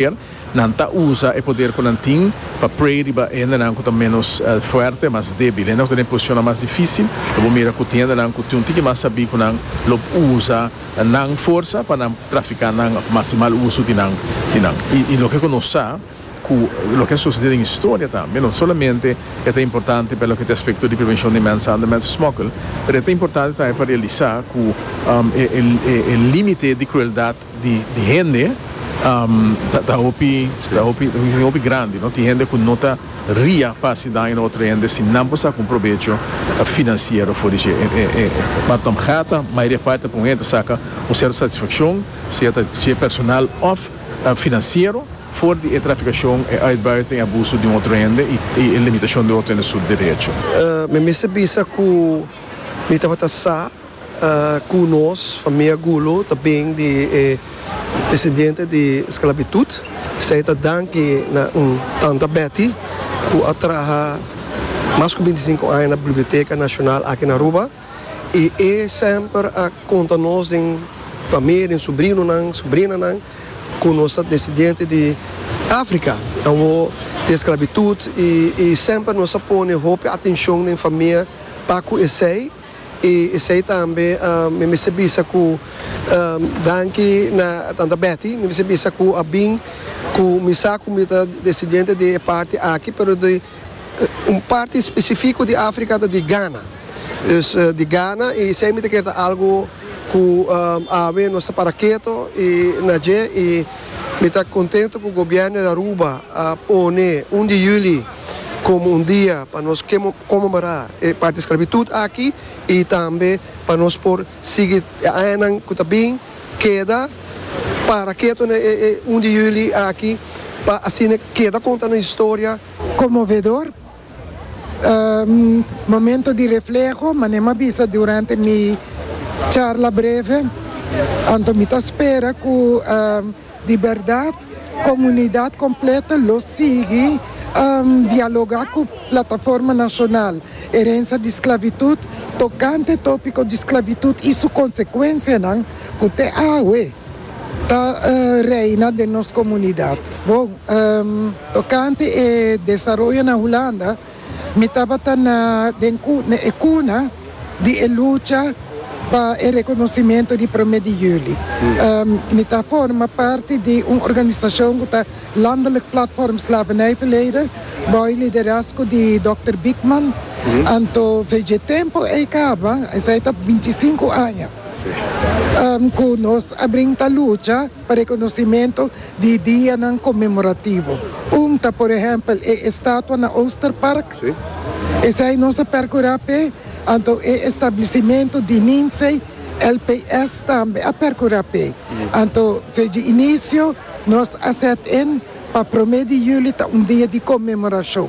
poder, nan ta usa e poder cu nan tin pa pray riba hendenan cu ta menos fuerte, mas debil, hendenan cu ta den posicionnan mas dificil. Lo bo mira cu tin hendenan cu tin un tiki mas sabi cu nan lo usa nan forsa pa nan trafica nan of mas di mal uso di nan, di nan. Y, y loke cu nos sa cu loke a sucede den historia tambe, no solamente e ta importante pa loke ta aspecto di prevencion di mensander, mensesmokkel, pero e ta importante tambe pa realisa cu e, e, e limite di crueldad, di hende ta hopi hopi grandi no tin hende ku no ta ria pa hasi daño na otro hende si nan por saka un probecho finansiero for di shi e martom gata mayoria parti pa un hende ta saka un sierto satisfakshon sea ta dje personal of finansiero for di e trafikashon e uitbuiting e abuso di un otro hende i e limitashon di otro hende su derecho. Mi mester bisa ku mi tabata sa. Ku nos famia Gulu ta bin di e desidiente di sklabitut, esei ta danki na un tanta Betty ku a traha mas ku binti sinku aña na Biblioteka Nashonal aki na Aruba i e semper a konta nos den famia, den subrinonan, subrinanan ku nos ta desidiente di Afrika awor di e sklabitut i semper nos a pone hopi atenshon den famia pa ku esei. I esei tambe mi mester bisa ku danki na Tanta Betty, mi mester bisa ku a bin ku mi sa ku mi ta desendiente di e parti aki pero di un parti spesifiko di Afrika ta di Gana. Dus di Gana i esei mi ta kere ta algu ku awe nos ta para keto i na dje i mi ta kontentu ku gobièrnu di Aruba a pone un di yüli komo un dia pa nos konmemorá e parti sklavitut aki i tambe pa nos por sigui e añanan ku ta bin keda para ketu na e un di yuli aki pa asina keda konta nos historia. Konmovedor momento di refleho, manera mi a bisa durante mi charla breve, anto mi ta spera ku. Di bèrdat, komunidat kompleto lo sigui dialogá ku Plataforma Nashonal Erensia di Sklavitut tokante tópiko di sklavitut i su konsekuensianan ku te awe ta reina den nos komunidat. Bon, tokante e desaroyo na Hulanda. Mi tabata na den e cuna di e lucha pa e reconocimento di Prome di Juli. Mi ta forma parti di un organisacion cu ta Landelijk Platform Slavernijverleden, bao e liderazgo di Dokter Biekman. Anto vj tempo ei caba, esai ta bintisinco aña cu nos a brinta lucha. pa rekonosementu di dianan konmemorativo. Un ta por ehèmpel e estatua na Oosterpark. Esei nos a perkurá p'e, anto e establisimentu di Ninzei LPS tambe a perkurá p'e. Anto feji inisio nos a sèt in pa promé di juli ta un dia di konmemorashon.